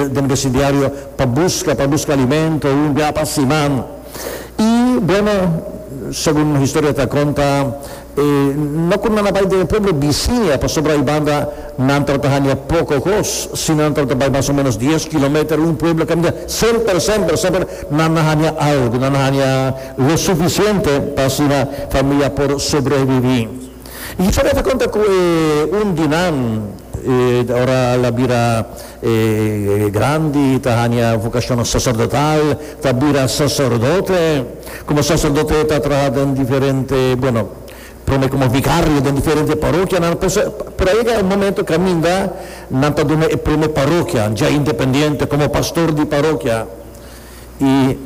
den besindiario pa buska pa buska alimento un bia pa siman y bueno segun historia ta conta e no cu nan a bay den e pueblo bicinia pasobra aybanda nan ta ta hania poco cos si nan ta ta bay mas o menos dies kilometer un pueblo caminda semper semper semper nan na hania algo nan na hania lo suficiente pa asina familia por sobrevivi y historia ta conta cu e un di nan e ora ala bira. E grandi ta hanja vokashonnan saserdotal, ta bira saserdote. Komo saserdote e ta traha den diferente, bueno, promé komo vikario den diferente parokianan, pero so, pero a yega e momento kaminda nan ta duna e promé parokia, dja independiente, komo pastor di parokia. I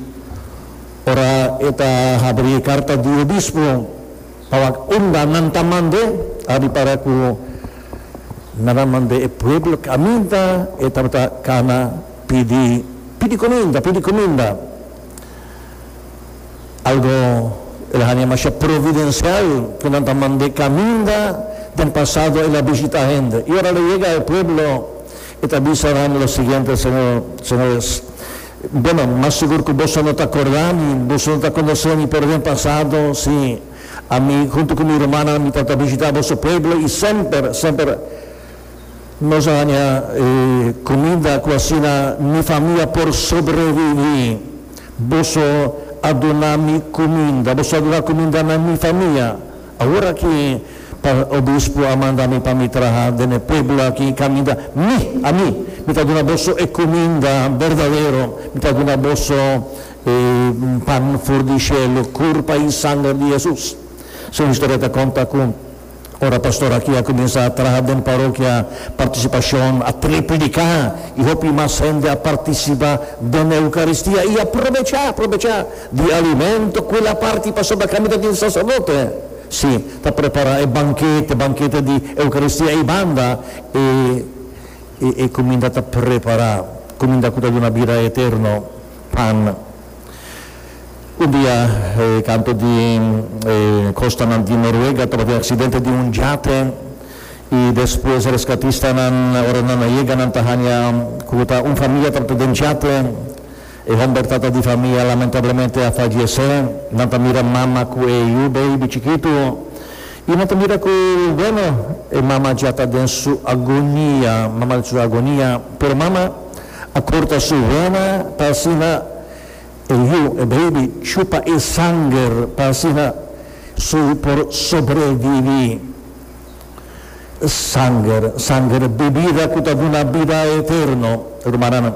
ora e ta habri e karta di obispo. Pawa unda nan ta mand'é? A ripara ku nan a mand'é e pueblo kaminta, e tabata kana pidi, Pidi kuminda, pidi kuminda! Algo el a haña masha providensial ku nan ta mand'é kaminda. Den pasado el a bishita hende. I ora el a yega e pueblo, e ta bisa nan lo siguiente, Señor, señores, Bueno, mas sigur cu boso no ta corda ni boso no ta conoce mi pero den pasado si ami hunto cu mi rumannan mi ta ta bishita boso pueblo y semper, semper nos a hanja e comida cu asina mi famia por sobrevivi. Boso a duna mi cuminda, boso a duna cuminda na mi famia. Awor aki pa Obispo a manda mi pa mi traha den e pueblo aki caminda, mi, ami, mi ta duna boso e cuminda berdadero, mi ta duna boso e pan for di cielo, curpa y sanger di Jesus. Su historia ta conta cu ora pastor aki a cuminsa a traha den parokia Participacion a trae predica y hopi mas hende a participa den Eucaristia y a probecha, probecha, Di alimento cu el a parti pasobra cami ta tin sacerdote, si, ta prepara e bankete, bankete di Eucaristia ei banda, e e cuminda ta prepara cuminda cu ta duna bida eterno, pan. Un dia e canto di e costanan di Noruega tabatin accidente di un jate y despues rescatistanan ora nan a yega nan ta hanja cu ta un familia tabata den jate, E homber tata di famia lamentablemente a fallece. Nan ta mira mama cu e yu baby chikitu y nan ta mira cu bueno e mama dja ta den su agonia, mama su agonia, pero mama a corta su wena pa asina e yu, e baby, chupa e sanger pa asina su por sobrevivi. Sanger, sanger, bibida ku ta duna bida eterno. Rumannan,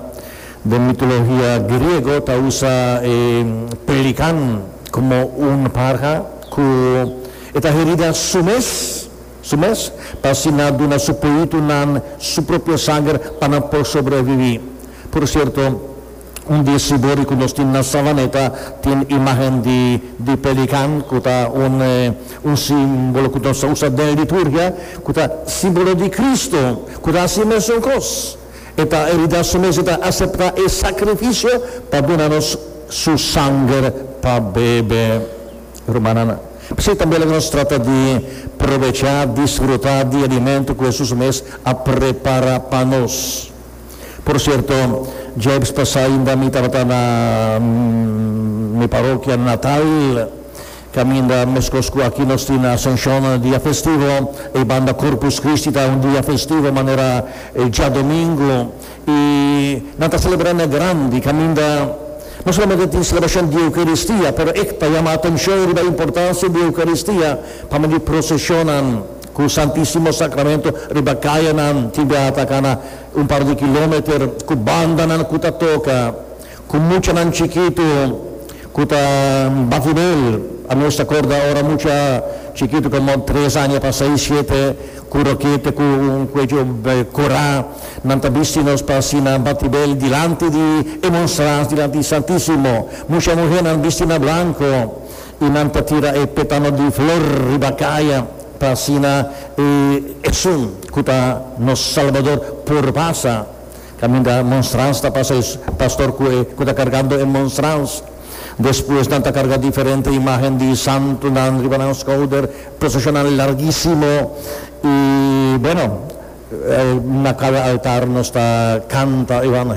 den mitolohia griego ta usa e pelikan komo un parha ku e ta herida su mes, su mes, pa así nan duna su poitunan su propio sanger pa nan por sobreviví. Por sierto. Un di e sibori ku nos tin na Savaneta tin imágen di di pelikan ku ta un un símbolo ku nos ta usa den liturgia ku ta símbolo di Kristu ku ta hasi e mesun kos. E ta e hidá su mes, e ta aseptá e sakrifisio pa duna nos su sanger pa bebe. Rumannan, p'esei tambe laga nos trata di probechá, disfrutá di e alimento ku Hesus mes a prepará pa nos. Por cierto, djebs pasa ainda mi tabata na mi parokia natal, caminda mescos cu aki nos tin Ascension dia festivo, e banda Corpus Christi ta un dia festivo manera e djadomingo y nan ta celebra na grandi, caminda no solamente tin celebracion di Eucaristia pero ec ta yama atencion riba importancia di Eucaristia pa medio procesionnan. Ku Santisimo Sakramentu riba kayanan tin biaha ta kana un par di kilometer, ku bandanan ku ta toka, ku muchanan chikitu ku ta bati del. A mes ta korda ora mucha chikitu komo tres aña pa seis, shete, ku rokete ku un kuecho korá, nan ta bisti nos pa asina bati del dilanti di e monstras, dilanti di Santisimo. Mucha muhénan bisti na blanko. Y nan ta tira e petano di flor riba caya pa asina e esun cu ta nos Salbador por pasa. Caminda monstrans ta pasa e pastor cu e cu ta cargando e monstrans. Despues nan ta carga diferente imagen di santonan riba nan schouder, procesionnan larguisimo y, bueno, na cada altar nos ta canta evangelio.